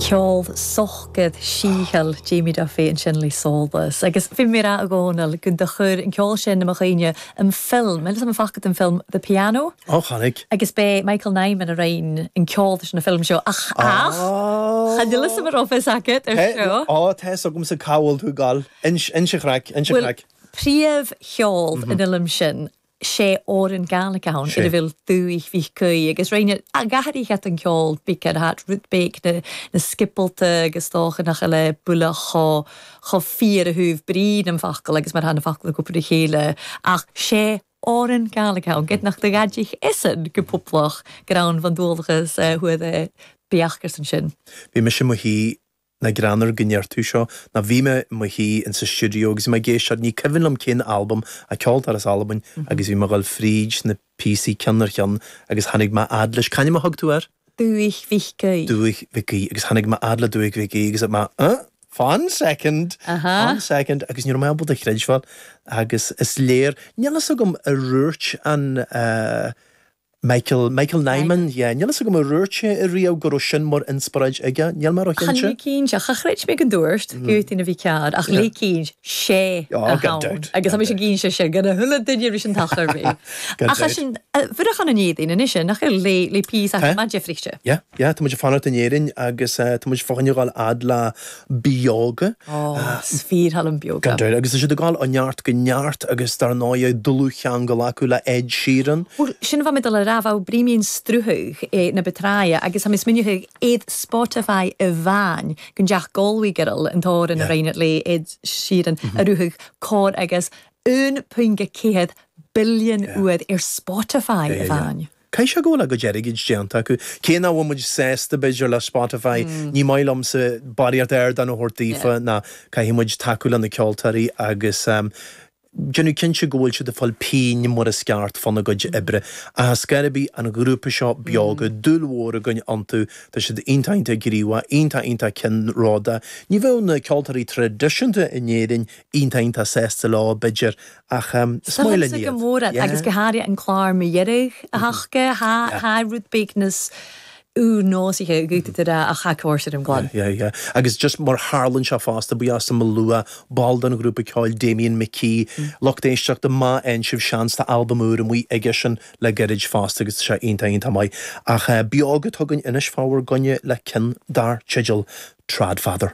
Ceol socair sìtheil Jamie Duffy ansin le Solas. Agus bhí mé a rá a Dhónaill gun do chuir an ceol sin i mo chuimhne an film, fhios a'm am faca tu an film The Piano. Ó, chonaic. Agus b'é Michael Nyman a rinn an ceol leis an film seo ach, ach, cha nil 'fhios a'm an raibh 'fhios agat ar seo. Tá, tá 'fhios agamsa cá bhfuil tú ag dul. Inis, inis an chraic, ins an chraic. Bhuel, príomh cheol an fhilm sin. sé fhoireann Gaelic ann idir Bhéal Dúigh Mhíc Caí agus Rinn a' Ghathaireach at an gceol big at hat rud béic na na scipealta agus dócha nach a le buile chomh chomh fíor a thabh brí na focal agus mar atá na focal a gcúpla le chéile ach sé fhoireann Gaelic ann gidh nach de Gaidhlig isan go poblach greann bhun dualgas thuaidh beach gur san sin. Bhí mise mo shuí Nach greannmhar go ndeir tú seo. Ná bhí mé i mo shuí in sa stiúideo agus mé ag éisteacht, ní cuimhin liom cén albam é, ceoltóir as Albain agus bhí mé ag dul fríd na píosaí ceann ar cheann agus tháinig mé fhad leis, c'ainm a thug tú air? Dúiche Mhic Aoidh. Dúiche Mhic Aoidh agus tháinig mé fhad le Dúiche Mhic Aoidh agus mé, huh? Fan second, fan second agus ní raibh mé ábalta a chreidbheáil agus is léir, níl fhios agam ar dhúirt an eh, Michael, Michael Nyman, Nyman. yeah. Níl a fhios agam ar dhúirt sé ariamh go raibh sin mar inspioráid aige, níl mé róchinnte. Cinnte, cha chreid mé go ndúirt, go dtí na bhí cead, ach Yeah. ligeann sé Oh, a gan thonn doubt, agus gan tá mise ag doubt. inse sin dhan a h-uile duine ris an tachair mi. Gan Ach tha doubt. sinn a' fuireach ann an Èirinn a-nise, nach eil, le pìos Tá. ach maidir frithche. Yeah, yeah, tá muid ag fanacht in Éirinn agus eh, tá muid fá choinne a ghabháil fhad le Beoga. Is fìor thoil leam Beoga. Gan dabht, agus tá siad ag dul ó neart go neart agus dar ndóigh dlúthcheangal acu le Ed Sheeran. Bhuel, sin bha mi a' dol a ràdh, bha thu bruidhinn mun t-sruthadh na bu tràithe agus tha mi smaoineachadh air Spotify a-mhàin gun deach Galway Girl an t-òran a rinn iad le Ed Sheeran a shruthadh còrr agus 1.4 billean uair air Spotify a-mhàin. Caithfidh sé go bhfuil a gcuid airgid déanta acu. Cé nach bhfuil muid sásta, b'fhéidir, le Spotify, ní maith liomsa barraíocht ardán a thabhairt daofa, ná caithfidh muid tacú le na ceoltóirí agus déanamh cinnte go bhfuil siad ag fáil pingin mar is ceart fána gcuid oibre. Ach ar scor ar bith an grúpa seo Beoga, dúil mhór againn iontu, tá siad iontach iontach gníomhach, iontach iontach ceannródaíoch. Ní bheadh na ceoltóirí traidisiúnta in Éirinn iontach iontach sásta leo, b'fhéidir, Ach is maith linn iad. Go mór an agus go háirithe an clár mu dheireadh aca, tha, tha e rud beag nas ùr-nòsaiche dìreach tha e a' còrdadh rium glan. Yeah yeah agus just mar a tharlaíonn sé fosta ba as am a lua ball den ghrúpa ceoil Damien McKee lucht éisteachta má fhaigheann sibh seans tá albam úr amuigh aigesean le gairid fosta agus seo iontach iontach maith ach Beoga atá againn anois fá bhur gcoinne le cionn dar teideal Tradfather.